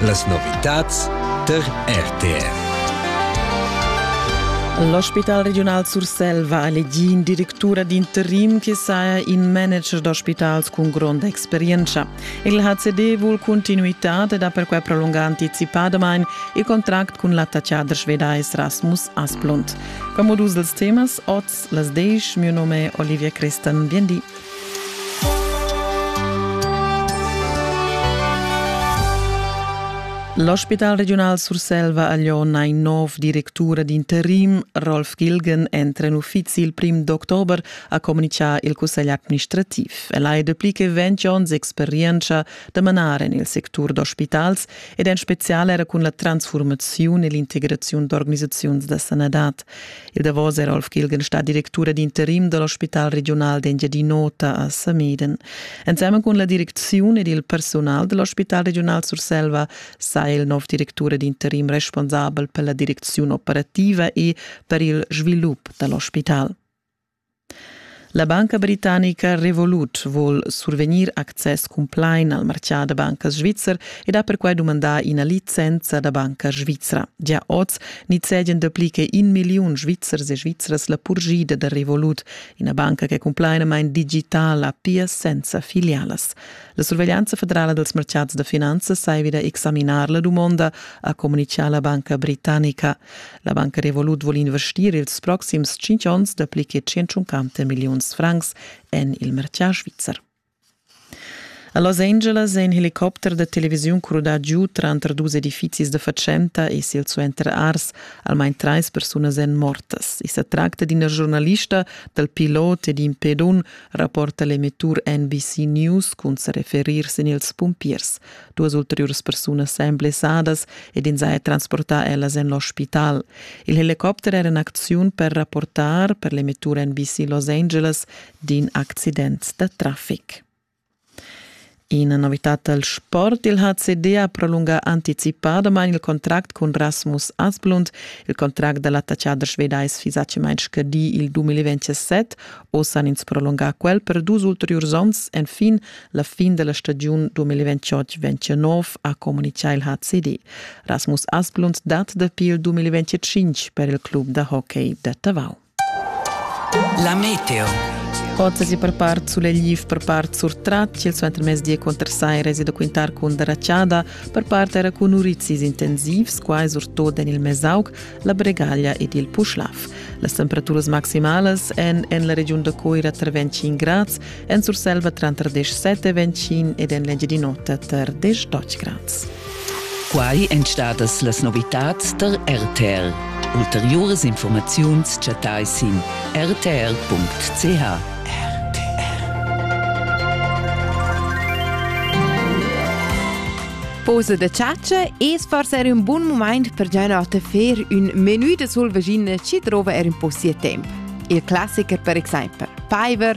Las novitads tar RTR. L'ospital regiunal Sursel va a elegir in directura d'interim che saja in manager d'ospitals cun gronda experienza. Il HCD vul continuitad ed ha perquai prolungà anticipadamain il contract cun l'attaccader svedais Rasmus Asplund. Come dus dels temas, oz las 10, mio nome è Olivia Crestan. Bien di. L'ospital regiunal Surselva ha Glion ein nov directura d'interim. Rolf Gilgen entra en uffizi il prim d'october, ha comunichà il cussegl administrativ. El ha dapli che ventg onns experienza da manar en il sectur d'ospitals ed en spezial era cun la transformaziun e l'integraziun d'organisaziuns da sanadad. Il davos era Rolf Gilgen stat directura d'interim dall'ospital regional d'Engiadin'Ota a Sameden. Ensemen cun la direcziun ed il personal dell'ospital regional Surselva sa il nov directura d'interim responsabel per la direcziun operativa e per il svilup dall'ospital. La banca britannica Revolut vul survegnir access cumplain al martgà da bancas svizzer ed ha perquai dumandà ina licenza da banca svizra. Gia oz nizzegian dapli che in milliun svizzers e svizras la purgida da Revolut, ina banca che cun plainamain digital ha pia senza filialas. La surveglianza federala dals martgads da finanzas sai wieder examinar la dumonda, ha communitgà la banca britannica. La banca Revolut vul investir ils proxims tschintg onns dapli che 150 milliuns francs en il mercà svizzer. A Los Angeles è in helicopter da televisiun crudà giu tranter dus edifizis da fatschenta e silsuenter ars. Almain trais persunas èn mortas. I sa tracta d'ina giornalista dal pilot ed in pedun, rapporta l'emettur NBC News cun sa referir sin ils pumpiers. Duas ulteriuras persunas èn blessadas ed ins ha transportà ellas en l'ospital. Il helicopter era en acziun per rapportar per l'emettura NBC Los Angeles d'in accident da traffic. Ina novità dal sport. Il HCD ha prolungà anticipadamain il contract cun Rasmus Asplund. Il contract da l'attachader sveda es fisà mai scadì il 2027. Oz han ins prolungà quel per dus ulteriurs onns. Enfin La fin della stagiun 2028-2029 ha communichà il HCD. Rasmus Asplund dat dapi il 2025 per il club da hockey da Tavau. La meteo. Ipotesi per part sull'Egliv, per part sur Tratsch, il suentermezdi contro Sai reside quintar con Racciada, per part era con Urizis intensivs, quai surtot en il Mesauc, la Bregaglia ed il Puschlav. Las temperaturas maximalas en, en la regiun da Coira tra 25 grads en Surselva tranter 17 e 25 ed en l'Engiadin'Ota tar 18 grads. Quai èn stadas las novitads tar RTL. Ulteriuras informaziuns chattai sin rtl.ch. Pose de ciaccia e forse era un buon momento per già notte fer un menù de sul vagina ci trova er un po' sia temp. Il classiker per esempio Piver